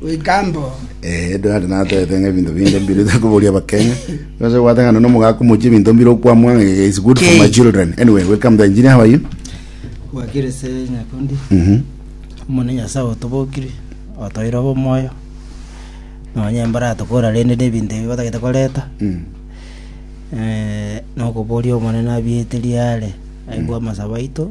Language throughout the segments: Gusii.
goika mbobe. Eh, edo nari natete ng'a ebinto binde mbire ase koboria abakenya ase obwate ng'a nonya omogaka omochie ebinto mbire okwamwa ng'a eh, it's good for my children anyway welcome the engineer how are you gwakire ase nyakundi Mhm. omone nyasae otobokire otoeire obe omoyo nonye mbara tokora rende na ebinto ebi batagete koreta Mm. eh, nokoboria omonene abiete riare aigwe amasabo aito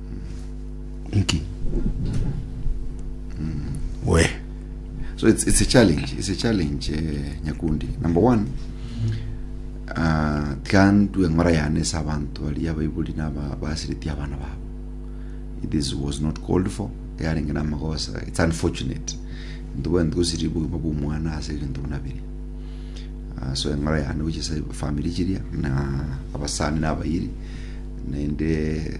Inki? we so it's, it's a challenge it's a challenge eh, nyakundi number one uh, tikandue ng'ora yane ase abanto baria abaibori naba basireti abana babo this was not called for yarenge na magosa it's unfortunate ntuba ntusiri bugima bw'omwana ase ebinto buna biri Ah, so eng'ora yane gochia ase family chiria na abasani na abayiri naende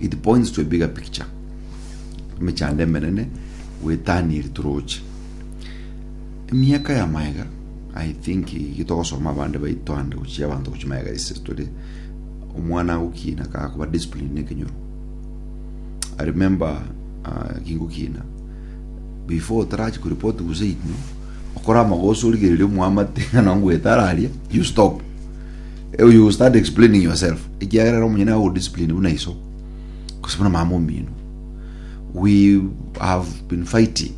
It points to a bigger picture. Emechando emenene gwetania eri toroche. Emiaka ya maega, I think gitogosoma abande baito ande gochia abanto gochia maega ise tore omwana agokina kakoba discipline ne ekenyoro. I remember uh, kingokina before otarachi kuripoti guse ino okora amagoso origereria omoamate ng'a nongwetararia you stop Eh, you start explaining yourself ekiagera ero omonyene ago discipline buna iso gose buna mama omino we have been fighting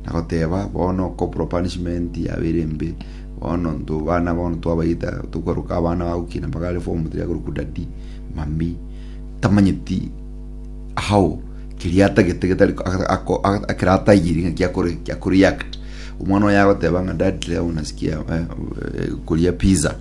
nagoteba bono corporal punishment yabere embe bono nto bana bono twabaita tokwaruka abana bagukina mpaka are form 3 agoruku daddy mami tamanyeti how keria atagete getari ako- ako- ako- akera atayiri ng'a kiakore kiakoreact omwana oyo agoteba ng'a dad leo nasikia eh, eh, koria pizza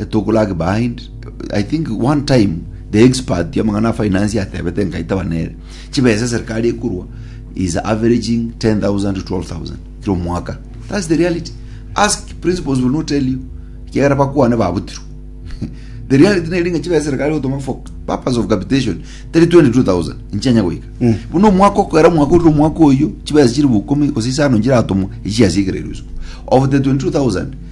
E took lag behind. I think one time the expert y'amang'ana a finance yatebete nkaitaba nere chibesa serikali ekurwa is averaging 10,000 to 12,000 kila omwaka. That's the reality. Ask principals will not tell you. Kiagera bakwane babutirwe. the reality neri ng'a chibesa serikali gotoma for purpose of capitation teri 22,000 nchianya goika. Buna omwaka okera omwaka orire omwaka oyo chibesa chiri bukumi gose isano nchiratomwa echiasigererwe isiko. Of the 22,000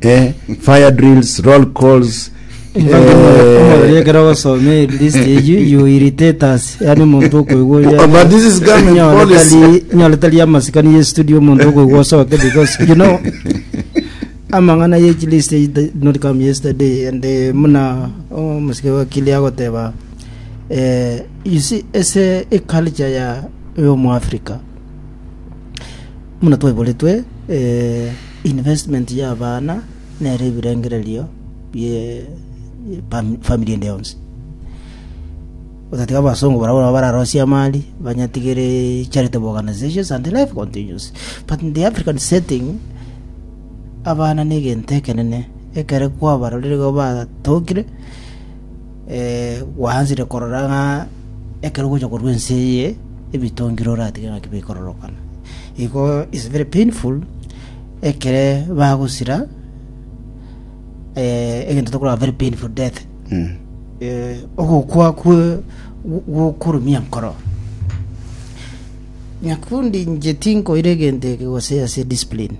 eh, fire drills roll calls omorori eh, ekero ogosoma eh, list eyio you irritate us yani omonto okoigwa oria Oh, but this is government nyore policy. tari nyore tari amasikani ye studio omonto okoigwa osoke because you know amang'ana ye chi list eyio did not come yesterday and eh, muna omusike wa kili agoteba eh, you see ese eculture ya yo mu Africa muna twaiboretwe eh, Investment y'abana nere ebirengererio bie family ende yonsi. Otatiga abasongo barabwo nabo bararosie amari, banyatigere charitable organizations and life continues. But in the African setting, abana negento ekenene ekere kwabarorire igo batokire “Gwaanchire korora ng'a ekero ogocha korwa ense eye, ebitongire oratige ng'aki bikororokana. Igo is very painful ekere bagosira eh, egento tokorora very painful death Mm. eh, ogokwa kwe gwokorumia nkoro nyakundi inche tinkoire egento eke gose ase discipline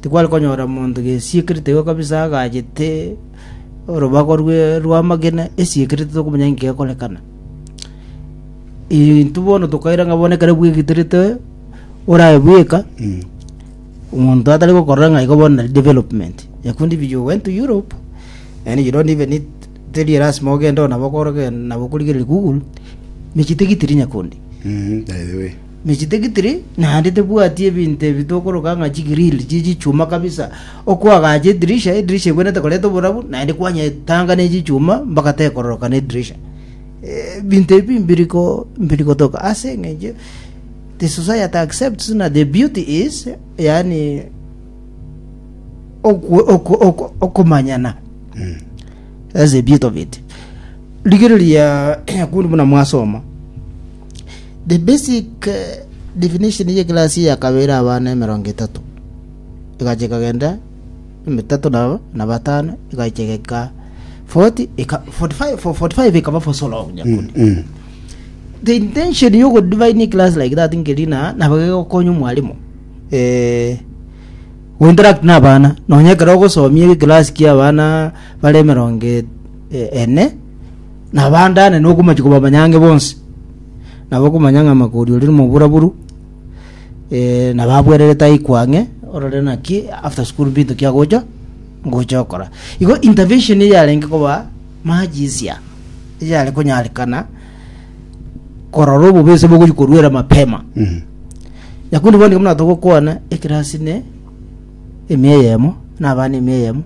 Tikware konyora monto gesiikerete igo kabisa agachete orobago rwe rw'amagena esiikerete tokomanya inki gekorekana. Intwe bono tokaira ng'a bono ekero bwegitorete orabe bweka omonto atari gokorora ng'a igo bono nari development ekio ndi biya you went to Europe and you don't even need teri erasima ogende oo nabo okoroke nabo okorigereria google mechie tigitiri nyakundi Mm, by the way. ne chitigitiri, naende tebwati ebinto ebi tokoroka ng'a chigrill chie chichuma kabisa, okoagacha edirisha, edirisha egwenerete koreta oborabu, naende kwanya etanga ne chichuma mpaka tekororoka na edirisha. Eh, Ebinto ebi mbiri ko mbiri gotoka ase eng'encho the society accepts na the beauty is yani oku- oku- oku- okomanyana That's the beauty of it. Rigereria yakundi buna mwasoma. The basic definition ye class ya kabere abana emerongo etato egacha ekagenda emetato na na batano egacha egeka 40 eka 45 for 45 ekaba for so long nyakundi Mm, mm. the intention yo go divine class like that ngerina nabage gokonya mwalimu eh go interact na abana nonya ekero ogosomia class kia abana bare emerongo e- e- ene Nabandane nokomochie kobamanya ang'e bonsi, na bakomanya ng'a Makori oria nomoburaburu, eh, na babwererete aikwa ang'e, orore naki after school binto ki agocha ngocha okora. Igo intervention eye yarenge koba much easier, eyare konyarekana korora obobe ase bogochia koruera mapema. Mhm. Nyakundi bono nigo buna togokwana ekirasi ne emia eyemo na abana emia eyemo,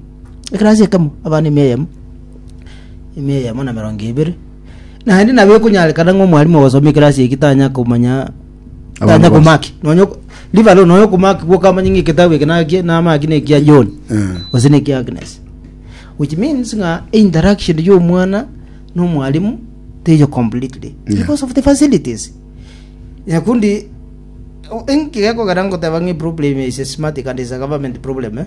ekirasi ekemo abana emia eyemo, emia eyemo na emerongo ebere naende nabo ekonyarekana ng'a omwarimu ogosoma ekerasi eki tanya komanya Abana tanya bose. komaki nonya ok- leave alone nonya okomaki gwoka amanye ng'a eketabu eke naki namaki na ekia john Eh. gose na ekia agnes which means ng'a interaction ya omwana na omwarimu teiyo completely Yeah. because of the facilities nyakundi o- enki gekogera ngoteba ng'a eproblem is a systematic and is a government problem eh?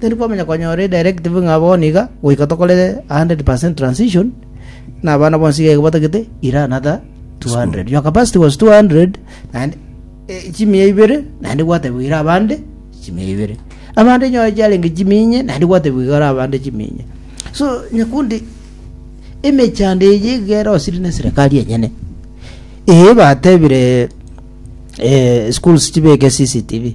Teri kwamanya konyora edirective ng'a bono iga goika tokore 100 per cent transition na abana bonsi iga iga batagete ira another 200 your capacity was 200 naende eh, chimia ibere naende gwatebiwa ira abande chimia ibere abande nyore chiarenge chiminye naende gwatebiwa igara abande chiminye so nyakundi emechando eye igere osiri na serikali enyene eye batebire eh, schools chibeke cctv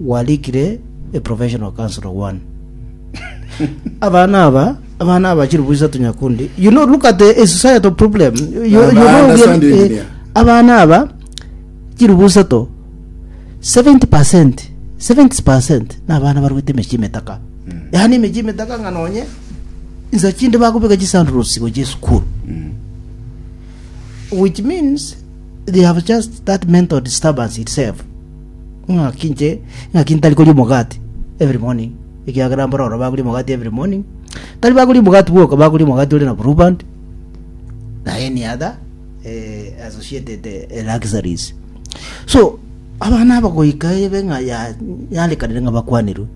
Gwarikire a professional councilor one. abana aba abana aba chiribu isato nyakundi you know look at the a societal problem you, you Abana know we are- sound eh, engineer. abana aba chiribu isato 70 percent 70 percent na abana barwete emechi emetaka yaani emechi emetaka ng'a nonye insa chinde bakobeka chisandals gochia esukuru which means They have just that mental disturbance itself, ng'aki inche, ng'aki ntari koria omogati every morning, ekiagera mbora oro bakoria omogati every morning, tari bakoria omogati bwoka, bakoria omogati ore na blue band, na any other eh, associated eh, luxuries. So, abana aba goika ebe ng'a ya- yarekanire ng'a bakwanirwe.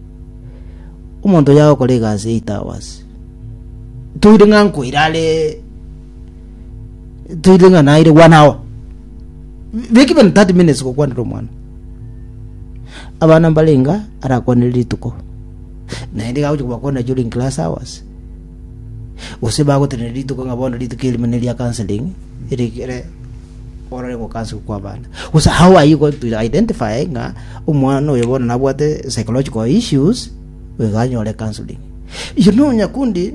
Omonto yagokora egasi 8 hours. Toire ng'a nkoirare toire ng'a naire one hour not even 30 minutes gokwanera omwana abana mbarenga arakwanere rituko naende iga agochia kobakwanera during class hours gose bagotenena rituko ng'a bono rituko erimo ne ria counseling erikere orore gokansu kwa abana gose how are you going to identify ng'a omwana oyo bono nabwate psychological issues iga anyore counseling you know nyakundi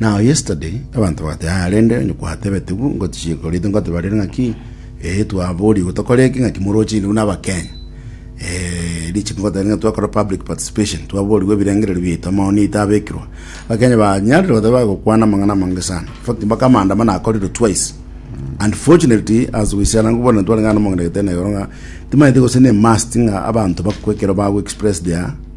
Now yesterday abanto bagati aa rende onye kwatebete bu ngotichie korite ngoteba rere ng'aki eh twabori igo tokore eki ng'aki moroche inde buna abakenya eh riche ngoteba ng'a twakora public participation twaborigwe ebirengererio biaito amaoni aito abekirwa abakenya banyarire goteba bagokwana amang'ana amange sana in fact mpaka amaandamano akorirwe twice unfortunately as we shall angu bono ntwareng'ana na omong'ina gete na igoro ng'a timanyete gose ne must ng'a abanto bakwe ekero bago express their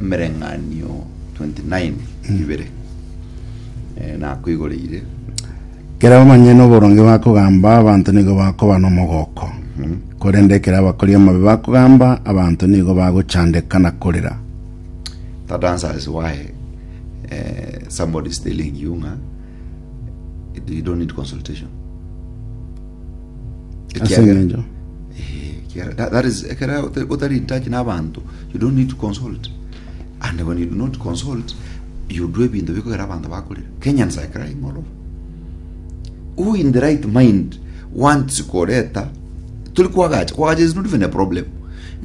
Emereng'anio 29 ibere eh, nakoigoreire Ekero bamanyire noboronge bakogamba, abanto nigo bakoba nomogoko. Korende ekero abakori amabe bakogamba, abanto nigo bagochandeka na korera. that answers why eh, somebody is telling you nga you don't need consultation Ase Ekiagera- engencho Eh, ekiagera- that- that is- ekero ote- otari in touch n'abanto you don't need to consult and when you do not consult you do ebinto bikogera abanto bakorire kenyans are crying all over who in the right mind wants koreta turi kwagacha kwagacha is not even a problem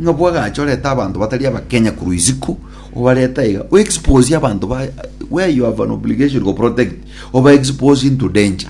ng'a bwagacha oreta abanto batari abakenya korwa isiko obareta iga o expose abanto ba where you have an obligation to protect oba expose into danger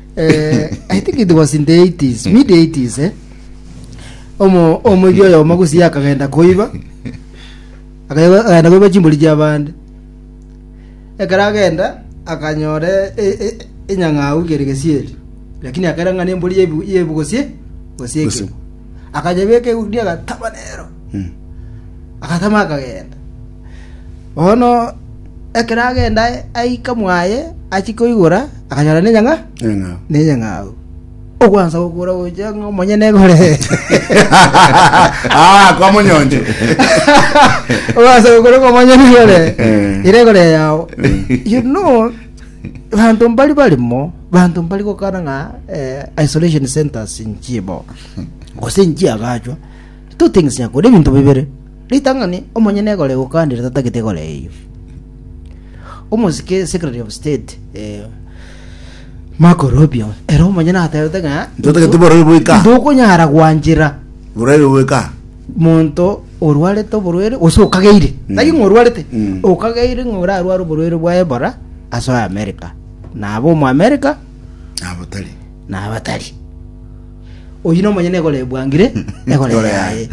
uh, I think it was in the 80s, mid 80s, eh? Omo omoigi oyo omagusi akagenda koiba. Akaiba akagenda koiba chimbori chia bande. Ekara agenda akanyore e- e- enyang'au kere gesieri. Lakini akera ng'ana embori yebu yebu gosie gosie Gosie. ekebo. Akanyebeka egunia agataba nero. Mm. Agatama akagenda. Bono ekero agenda aika mwaye achie koigora, akanyora nenyang'a Neng'ao. nenyang'au. Ogwansa gokora gochia ng'a omonyene egore. Ah, kwa monyonje. Ogwansa gokora ng'a omonyene egore. Eh. Ire egore yao. You know, banto mbari barimo, banto mbari gokana ng'a eh, isolation centers nchibo. Gose nchiagachwa. Totengesaria kore ebinto bibere. Ritang'ani omonyene egore gokandire tatagete egore eyio. Omosike Secretary of State eh, Marco Rubio ero omonyene atebete ng'a Tatagete borori boika. ndokonyara gwanchera Boraibe boika. monto orwarete oborwere gose okageire tari ng'a orwarete Mm. okageire ng'a orarware oborwere bwa ebora asoe america nabo omo america Nabo tari. na abatari. Oyio na omonyene egoro ebwangire egoro Egoro yaye. yaye.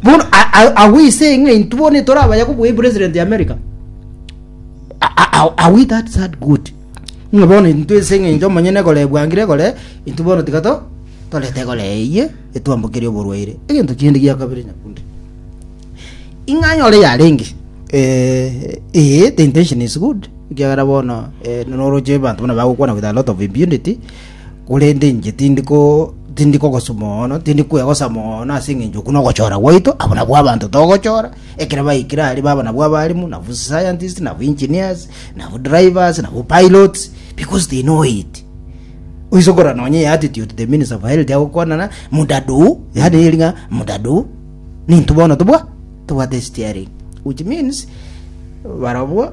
Bono a- a- agwo ise ng'a intwe bono etore abaya kobua president ya America. A- a- a- Are we that sad good? Ng'a bono intwe ise ng'a inche omonyene egoro ebwangire egoro intwe bono tiga to torete egoro eyie etwambokerie oborwaire. Egento kende gia kabere nyakundi. Ing'anyore yarenge. Eh, eh, the intention is good. Ekiagera bono noroche abanto buna bagokwana with a lot of impunity, korende inche tindi ko tindi kogosu mono, tindi kwegosa mono ase eng'encho okwo nogochora gwaito, abwo nabwo abanto togochora, ekero baikire aria baba nabwo abalimu, nabu scientists, nabu engineers, nabu drivers, nabu pilots, because they know it. Oise korora nonye eye attitude the minister of health agokwanana, mudaduu, yaani eri ng'a mudaduu, nintwe bono tobwa tobwate steering, which means barobwo